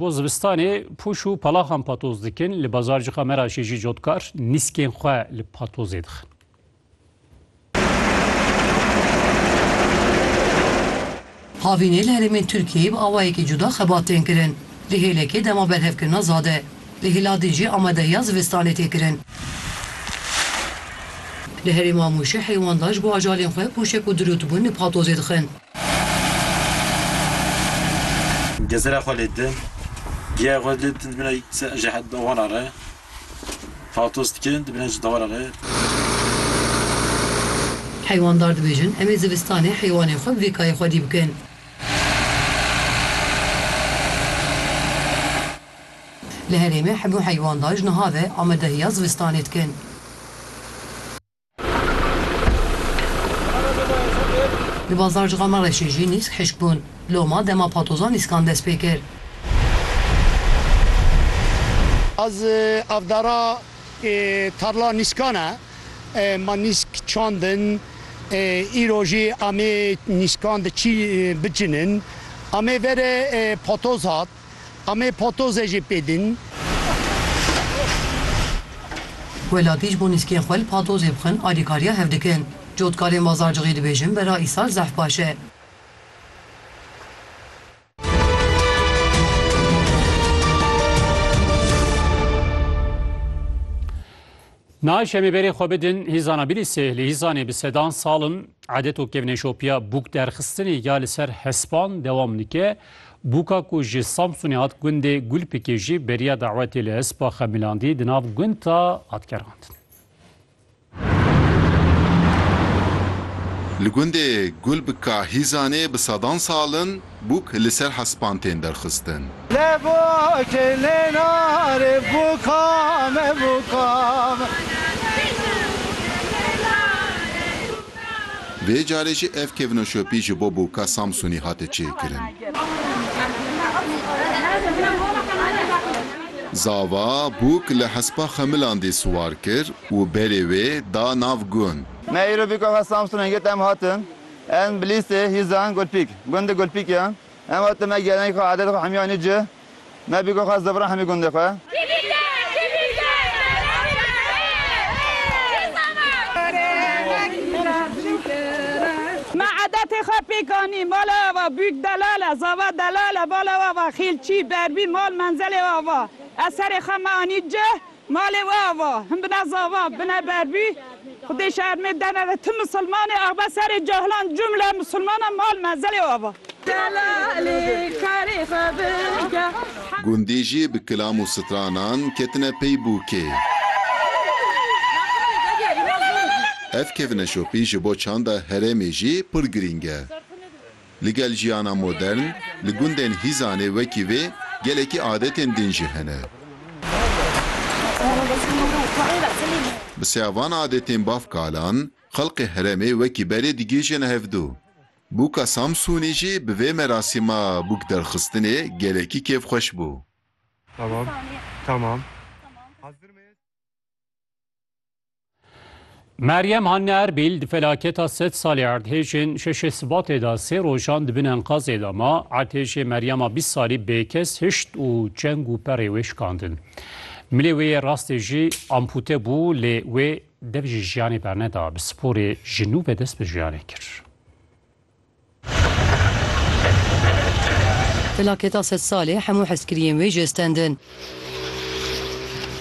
Bo zivistanê pûş û palaxan patoz dikin, li Bazarcika Meraşê jî cotkar nîskên xwe li patozê dixin. Havînê li herêmên Tirkiyeyê bi awayekî cuda xebat tên kirin. Di hêlekê dema berhevkirina za de. Li Hîladê jî amadehiya zivistanê tê kirin. Li herêma Mûşê heywandaş bo ajalên xwe pûşek û dirûtbûn li patozê dixin. Gezira xwe lê din, giya xwe lê din dimîne ji dewara re paltos dikin, dimîne ji dewara re. Heywanddar dibêjin, Em ê zivistanê heywanên xwe bi vê kayê xwedî bikin. Li herêmê hebû heywanddar ji niha ve amadehiya zivistanê dikin. Di bazarcixê Mereşê jî nîsk hişk bûn. Loma dema patozan nîskan dest pê kir. Ez avdara tarla nîskan e. Me nîsk çandin. Îro jî amê nîskan di çî bicinin. Amê verê patoz hat. Em ê patozê jî pê din. Welatî ji bo nîskên xwe li patozê bixin alîkariya hev dikin. Cotkarên Bazarcixê dibêjin bera îsal zehf baş e. Nayê şemê berê xwe bidin hîzana Bilîsê li hîzanê bi sedan sal in edet û kevneşopiya bûk derxistinê ya li ser hespan dewam dike. Bûka ku ji Samsunê hat gundê Gulpikê jî beriya dawetê li hespa Xemilandî di nav gund de hat gerandin. Li gundê Gulbika hîzanê bi sedan sal in, Bûk li ser hespan tên derxistin. Lebo ke lênare bûka me bûka me. Vê carê jî ev kevnoşopî ji bo bûka Samsûnî hate çêkirin. Zava, bûk li hespa Xemilandî siwar kir û berê wê da nav gund. Me îro bûka xwe Samsûnê girt em hatin. Em bi lîstê hîzan Gulpîk, gundê Gulpîk ye. Em hat me gêrenî xwe adetê xwe hemîyanî ci. Me bîko xwest zevran hemî gundê xwe. Me adetê xwe pêk anî. Mala we va Bûk Delal e, zava Delal e. Bala we va Xêlçî, Berbî, mal menzelê we va. Ez serê xwe me anî cih. Malê we ava, him bine zava, bine berbî, xwedê şermê dene ve ti misilmanê abe serê cahilan cumle misilmanan mal mezelê we ava. Delalê karê xwe bige. Gundî jî bi kilam û stranan ketine pey bûkê. Ev kevneşopî ji bo çanda herêmê jî pir girîng e. Li gel jiyana modern, li gundên Hîzanê wekî vê gelekî adetên din jî hene. Bi seya van adetên baf kalan, xelkê heremê wekî berê digihîjin hevdu. Bûka Samsûnî jî bi vê merasîma bûk derxistinê gelekî kêfxweş bû. Meryem Hanne Erbîl di felaketa sed salê erdhêjên şeşê Sibatê de sê rojan di bin enkazê de ma. Erdhêjê Meryema bîst salî bêkes hişt û çeng û perê wê şikandin. Milê wê yê rastê jî ampute bû lê wê dev ji jiyanê berneda. Bi sporê ji nû ve dest bi jiyanê kir. Felaketa sed salê hemû hezkiriyên wê jê stendin.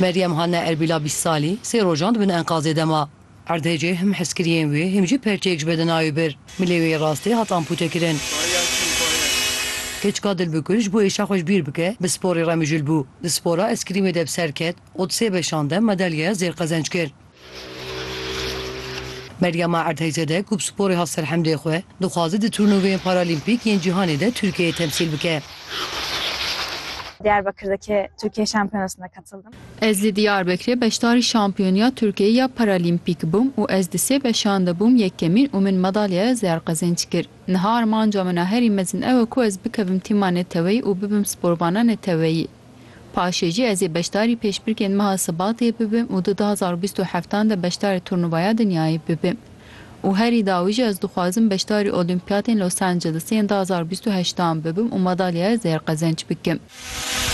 Meryem Hanne Erbîla bîst salî sê rojan di bin enkazê de ma. Erdhejê him hezkiriyên wê him jî perçeyek ji bedena wê bir. Milê wê yê rastê hat ampûtekirin. Keçika Dilbikur ji bo êşa xwe ji bîr bike bi sporê re mijûl bû. Di spora eskrîmê de bi ser ket û di sê beşan de madalyeya zêr qezenc kir. Meryama Erdheyzade ku bi sporê hat ser hemdê xwe, dixwaze di turnuveyên Paralîmpîk yên cîhanê de Tirkiyeyê temsîl bike. Diyarbekir'deki Türkiye Şampiyonası'na katıldım. Ez li Diyarbekirê beşdarî Şampiyoniya Tirkiyeyê ya Paralîmpîk bûm û ez di sê beşan de bûm yekemîn û min madalyaya zêr qezenç kir. Niha armanca min a herî mezin ew e ku ez bikevim tîma neteweyî û bibim sporvana neteweyî. Paşê jî ez ê beşdarî pêşbirkên meha Sibatê bibim û di du hezar û bîst û heft an de beşdarê Turnuvaya Dinyayê bibim. Û herî dawî jî ez dixwazim beşdarî Olîmpiyatên Los Angelesê yên du hezar û bîst û heşt an bibim û madalyaya zêr qezenç bikim.